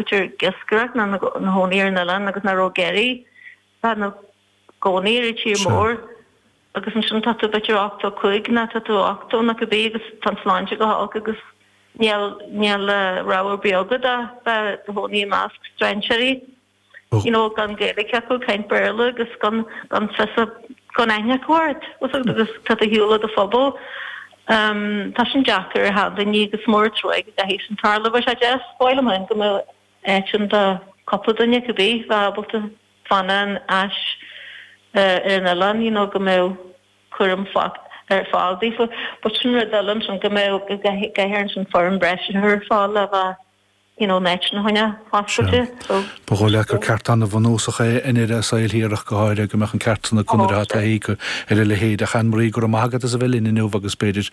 B'fhéidir iascaireacht ná ina chónaí ar an oileán agus nach raibh ag iarraidh bheith ina gcónaí ar an tír mór agus ansin tá tú, b'fhéidir ochtó a cúig ná tá tú ochtó ná cibé agus tá an tsláinte go holc agus níl rogha ar bith agat ach bheith i do chónaí i measc strainséirí, you know, gan Gaeilge acu, caint Béarla agus gan fios, gan aithne acu ort agus tá tú ar shiúl ó do phobal. Um, tá sin deacair ar achan duine, agus mór an truaigh go gcaithfidh sin tarlú, bheadh sé deas, b'fhearr liom fhéin, go mbeadh áit ann do cupla duine, go bí, bheadh ábalta fanacht ar ais ar an oileán, you know, go mbeadh cúram á chur ar fáil daofa, but sin rud eile ansin, go mbeadh, go gcaithfear ansin foireann breise a chur ar fáil le bheith, you know fána choinne, so. Ba dhóigh leat gur ceart an-bhunúsach é i ndeireadh a saoil thiar ach go háirithe go mbeadh an ceart san acu nuair athá taithí ar a leithéid. Ach Anne Marie, go raibh maith agat as a bheith linn inniu agus, b'fhéidir,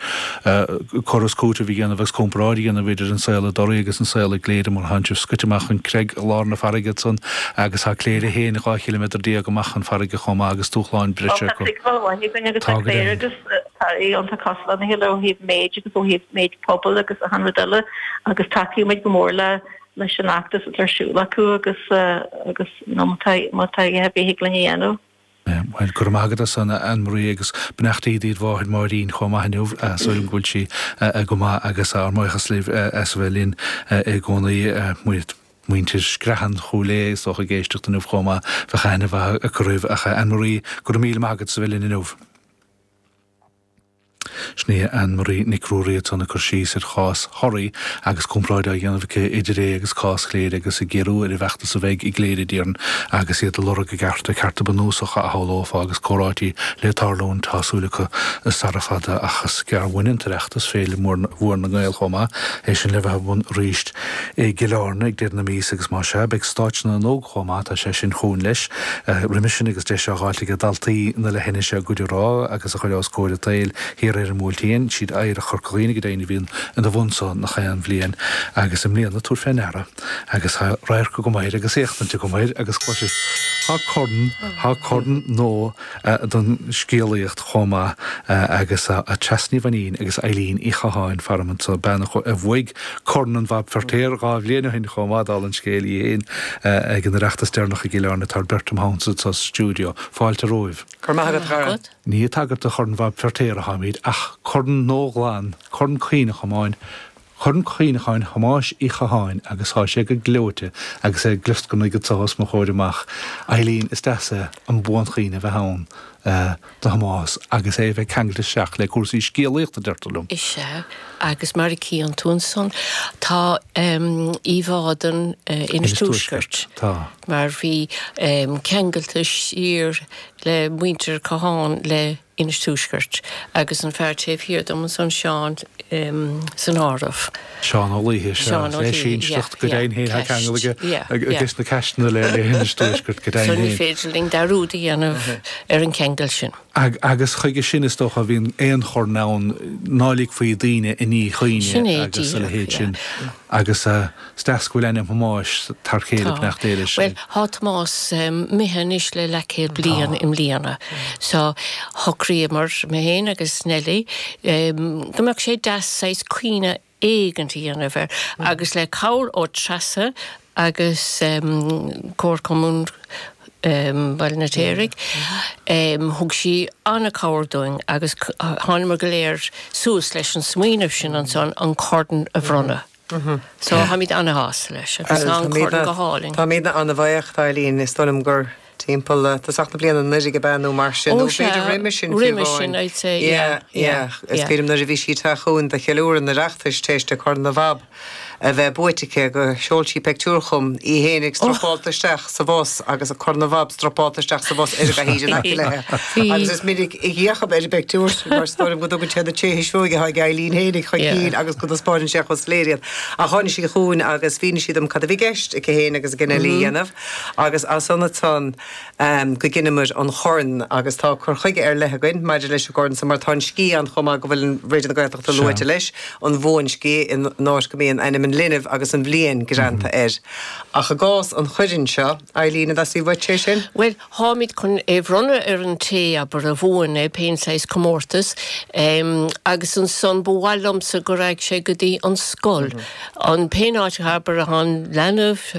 cur is cúiteamh a dhéanamh agus comparáid a dhéanamh idir an saol i dToraí agus an saol i gCléire mar tháin sibh scoite amach chun creig i lár na farraige ansan agus tá Cléire féin 12 chiliméadar amach chun farraige chomh maith agus dúshláin breise acu. Tá siad taobh amuigh againn agus tá Cléire agus. tá iontach cosúil lena chéile ó thaobh méid agus ó thaobh méid pobail agus achan rud eile agus tacaíonn muid go mór le leis an fheachtas atá ar siúl acu agus agus you know má tá má tá dadaí ar bith a thig linn a dhéanamh. Bhuel, go raibh maith agat as san Ann Marie agus beannachtaí dod mháthair Máirín chomh maith inniu, súil agam go bhfuil sí go maith agus ár mbuíochas libh as a bheith linn i gcónaí. Muid, muintir Screathan Chúil Aodha is dócha ag éisteacht inniu chomh maith, bheadh aithne mhaith acu oraibh ach Ann Marie, go raibh míle maith agat as a bheith linn inniu. Sin í Anne Marie Nic Ruairí ansan ag cur síos ar chás Thoraí agus comparáid á dhéanamh aici idir é agus cás Chléire agus ag géarú ar an bhfeachtas a bheidh i gCléire déarfainn agus iad ag lorg a gcearta, cearta bunúsacha a shamhlófá agus comhráití le tarlúint tá súil acu sara fada ach is gearr uainn an tOireachtas féile mhór na nGael chomh maith, é sin le bheith ar bun arís. i gCill Airne ag deireadh na míosa agus más ea, beidh stáitse na n-óg chomh maith, tá sé sin chugainn leis, roimhe sin agus deis á fháilt aige daltaí na leithinise a gcuid a rá agus a chur os comhair an tsaoil thiar ar an mBuailtín, siad Oidhreacht Chorca Dhuibhne go deimhin a bhíonn ina bhun san gach aon bhliain agus i mbliana, tabhair fé ndeara agus tá radharc agam air agus éachtaint agam air agus cloiseas, tá corn, tá corn nua. don scéalaíocht chomh maith agus Treasa Ní Mhainín agus Éilín Uí Chatháin, faram anso, bean a bhuaigh Corn an Bhab Feirtéar dhá bhliain ó shin chomh maith, dála an scéil í féin, ag an Oireachtas deireanach i gCill Airne. Tá beirt im theannta sa stiúideo. Fáilte romhaibh. Go raibh maith agat, a chara. Ní ag tagairt do Chorn Bhab Feirtéar a tháimid ach corn nua glan, Corn Cuimhneacháin, Corn Cuimhneacháin Thomáis Uí Chatháin agus thá sé go gleoite agus é ag glioscarnaigh go tsoth os mo chomhair amach. Eileen, is deas é an buanchuimhne a bheith ann do Thomás agus é a bheith ceangailte isteach le cúrsaí scéalaíochta, deirtear liom. Is ea, agus mar a chíonn tú ansan, tá íomhá den Inis Tuaisceart, mar bhí ceangailte siar le muintir Chatháin léi. Inis Tuaisceart, agus an fear taobh thiar dom ansan, Seán, san áireamh. Seán Ó Laoithe, sea. Seán Ó Laoithe, yeah, yeah, Ceaist. Go deimhin féin, tá ceangal aige, yeah, yeah, ages na Ceaisteanna le hInis Tuaisceart, go deimhin féin. So ní féidir linn dearúd a dhéanamh ar an gceangal sin. Agus chuige sin, is dócha, a bhíonn aon chorn ann, ná ligfí daoine i ndíchuimhne agus a leithéid sin, agus. Is deas go bhfuil ainm Thomáis thar céile Tá. fanacht Éire sin. Bhuel, tá Tomás imithe anois le leathchéad bliain i mbliana. So, shocraíomar, mé fhéin agus Nellie, go mbeadh sé deas saghas cuimhne éigint a dhéanamh air agus le cabhair ó Treasa agus Comharchumann Bhaile an Fheirtéaraigh, thug sí an-chabhair dúinn agus thánamar go léir suas leis an smaoineamh sin ansan an Corn a bhronnadh. So táimid an-shásta leis agus tá an corn go hálainn. Táimidne an-bhuíoch d'Eileen, is dóigh liom gur timpeall, tosach na bliana anuraidh ab ea nó mar sin, nó b'fhéidir roimis sin fiú amháin. Ó sea, roimis sin I'd say, yeah, yeah. Is dóigh liom nuair a bhí sí ag teacht chugainn do cheiliúradh an Oireachtais tar éis di Corn Bhab a bheith buaite aici, gur sheol sí peictiúr chugam, í fhéinig stropáilte isteach. sa bhus agus Corn Bhab stropáilte isteach sa bhus ar a bheithígh in aice léithe. Agus is minic a d'fhéachadh ar an bpictiúr sin mar is dóigh liom, go dtugann sé na tréithe seoigh atá ag Eileen fhéinig chun cinn agus go dtaispeáineann sé chomh soiléir iad. Ach tháinig sí chugainn agus mhínigh sí dom cad a bhí i gceist aici fhéin agus ag Nellie a dhéanamh agus as san ansan go gceannaíomair an corn agus tá cur chuige ar leith againn maidir leis an gcorn san mar tá an sciath ann chomh maith go bhfuil Raidió na Gaeltachta luaite leis, an bhuansciath, in áit go mbíonn ainm an linbh agus an bhliain greanta air. Ach i gcás an choirn seo, Eileen, conas a bheidh sé sin? Bhuel, táimid chun é a bhronnadh ar an té, abair, a bhuann é, pén saghas comórtas, em, agus ansan ba mhaith liomsa go raghadh sé go dtí an scoil, an, pén áit, abair, an leanbh,